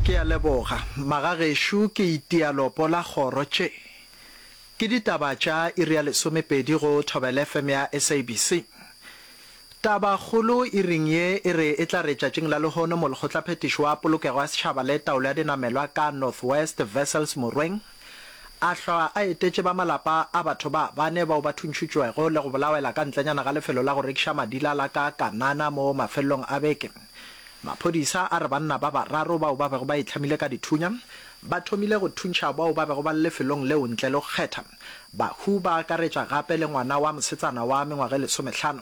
Ke a leboga, magagešo. Ke itia lopo la kgoro. Tše ke ditaba tša iri ya lesomepedi go Thobela FM ya SABC. Tabakgolo iring ye e re e tla re tšatšing la lehono molekgotlaphethiši wa polokego ya setšhaba le taolo ya dinamelwa ka North West Wessels Morweng, A hlwa a etetše ba malapa a batho ba bane bao ba thuntšhutšwego le go bolawela ka ntlenyana ga lefelo la go rekiša madila la ka Kanana mo mafelelong a beke. Maphodisa a re banna ba bararo bao ba bego ba itlhamile ka dithunya ba thomile go thuntšha bao ba bego ba le lefelong leo ntle le go kgetha, bahu ba akaretša gape le ngwana wa mosetsana wa mengwaga e lesomehlano,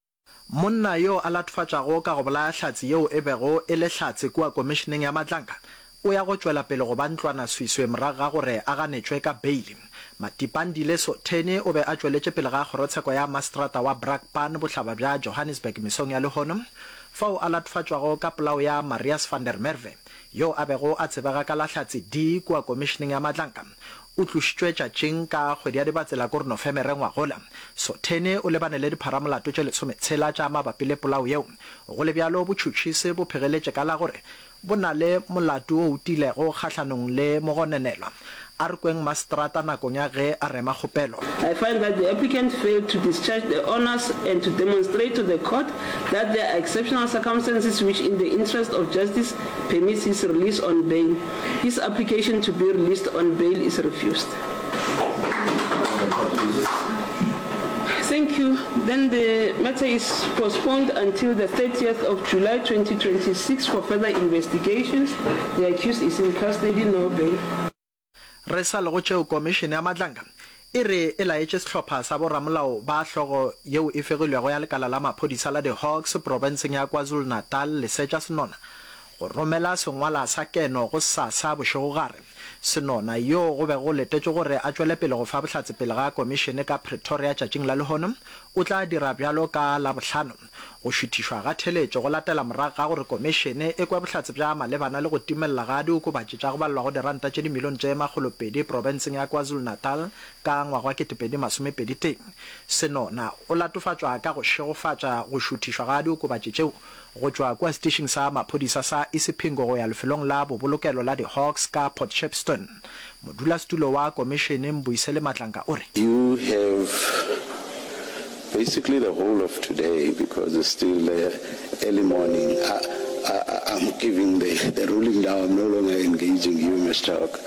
Monna yo a latofatšago ka go bolaya hlatse yeo e bego e le hlatse kua Komišeneng ya Matlanka o ya go tšwela pele go ba ntlwanaswiswe morago ga gore a ganetšwe ka beili. Matipandi Leso Theni o be a tšweletše pele ga kgorotsheko ya maseterata wa Brakpan bohlaba bja Johannesburg mesong ya lehono fao a latofatšwago ka polao ya Marius van der Merwe yo a bego a tsebega ka la Hlatse D kua Komišeneng ya Matlanka O tlošitšwe tšatšing ka kgwedi ya Dibatsela kor Nofemere ngwagola. Sothene o lebane le dipharamolato tše lesometshela tša mabapi le polao yeo. Go le bjalo botšhotšhisi bo phegeletše ka la gore bo na le molato o tiilego kgahlanong le mogononelwa. A re kweng maseterata nakong ya ge a rema kgopelo. I find that the applicant failed to discharge the honours and to demonstrate to the court that there are exceptional circumstances which in the interest of justice permits his release on bail. His application to be released on bail is refused. Thank you. Then the matter is postponed until the thirtieth of July twenty twenty six for further investigations. The accused is in custody, no bail. Re sa le go tšeo, Komišene ya Madlanga e re e laetše sehlopha sa boramolao ba hlogo yeo e fegilwego ya lekala la maphodisa la di Hawks profenseng ya KwaZulu-Natal lesetša senona Go romela sengwala sa keno gosasa bošego gare, Senona, yo go bego go letetšwe gore a tšwele pele go fa bohlatse pele ga komišene ka Pretoria tšatšing la lehono, o tla dira bjalo ka Labohlano. Go šuthišwa ga theeletšo go latela morago ga gore komišene e kwe bohlatse bja malebana le go timelela ga diokobatši tša go balelwago diranta tše dimilione tše makgolo pedi profenseng ya KwaZulu-Natal ka ngwaga wa kete pedi masome pedi tee. Senona o latofatšwa ka go šegofatša go šuthišwa ga diokobatši tšeo go tšwa kua setišing sa maphodisa sa Isipingo go ya lefelong la bobolokelo la di-Hawks ka Port Shepstone. Modulasetulo wa komišene, Mbuyiseli Matlanka, o re. You have basically the whole of today because it's still early morning. I'm giving the ruling now, I'm no longer engaging you Mister Hawk.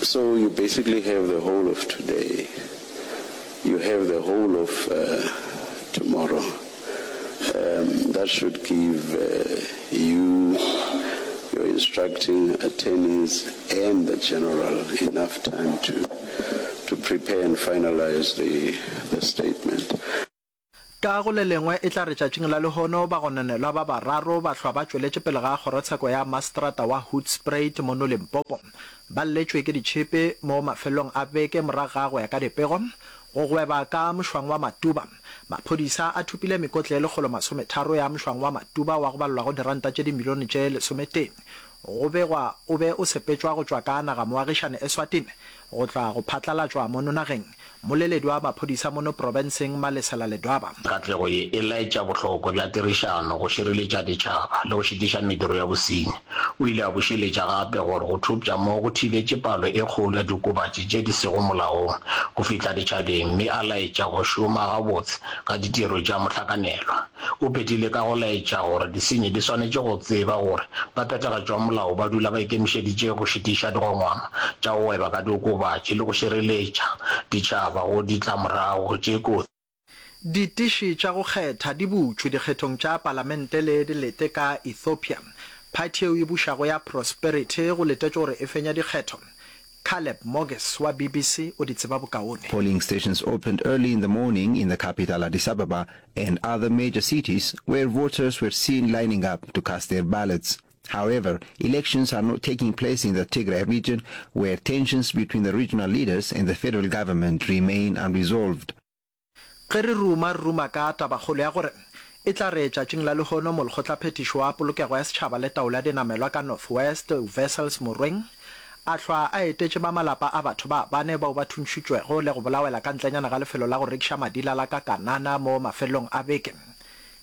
So you basically have the whole of today, you have the whole of tomorrow. um that should give you, your instructing attorneys and the general enough time to to prepare and finalize the the statement. Ka go le lengwe, e tla re tšatšing la lehono bagononelwa ba bararo ba hlwa ba tšweletše pele ga kgorotsheko ya maseterata wa Hoedspruit mono Limpopo, ba lletšwe ke ditšhipi mo mafelelong a beke morago ga go ya ka dipego go gweba ka mošwang wa Matuba. Maphodisa a thopile mekotla ye lekgolo masometharo ya mšwang wa Matuba wa go balelwa go diranta tše dimilione tše lesometee go begwa o be o sepetšwa go tšwa ka nagamoagišane Eswatini go tla go phatlalatšwa mono nageng. Mmoleledi wa maphodisa mono profenseng Malesela Ledwaba. Katlego ye e laetša bohlokwa bja tirišano go šireletša ditšhaba le go šitiša mediro ya bosenyi. O ile a bušeletša gape gore go thopša moo go thibetše palo e kgolo ya diokobatši tše di sego molaong go fihla ditšhabeng mme a laetša go šoma gabotse ga ditiro tša mohlakanelwa. O phethile ka go laetša gore disenyi di swanetše go tseba gore baphethagatši ba molao ba dula ba ikemišeditše go šitiša dikgongwama tša go gweba ka diokobatši le go šireletša ditšhaba go ditla-morago tše kotsi. Ditiši tša go kgetha di butšwe dikgethong tša palamente le dilete ka Ethiopia. Phathi yeo e bušago ya Prosperity go letetšwe gore e fenya dikgetho. Caleb Moges wa BBC o di tseba bokaone. Polling stations opened early in the morning in the capital Addis Ababa and other major cities where voters were seen lining up to cast their ballots. However, elections are not taking place in the Tigray region, where tensions between the regional leaders and the federal government remain unresolved. Ge re ruma, re ruma ka tabakgolo ya gore e tla re tšatšing la lehono molekgotlaphethiši wa polokego ya setšhaba le taolo ya dinamelwa ka North West, Wessels Morweng, a hlwa a etetše ba malapa a batho ba bane bao ba thuntšhitšwego le go bolawela ka ntlenyana ga lefelo la go rekiša madila la Kakanana mo mafelelong a beke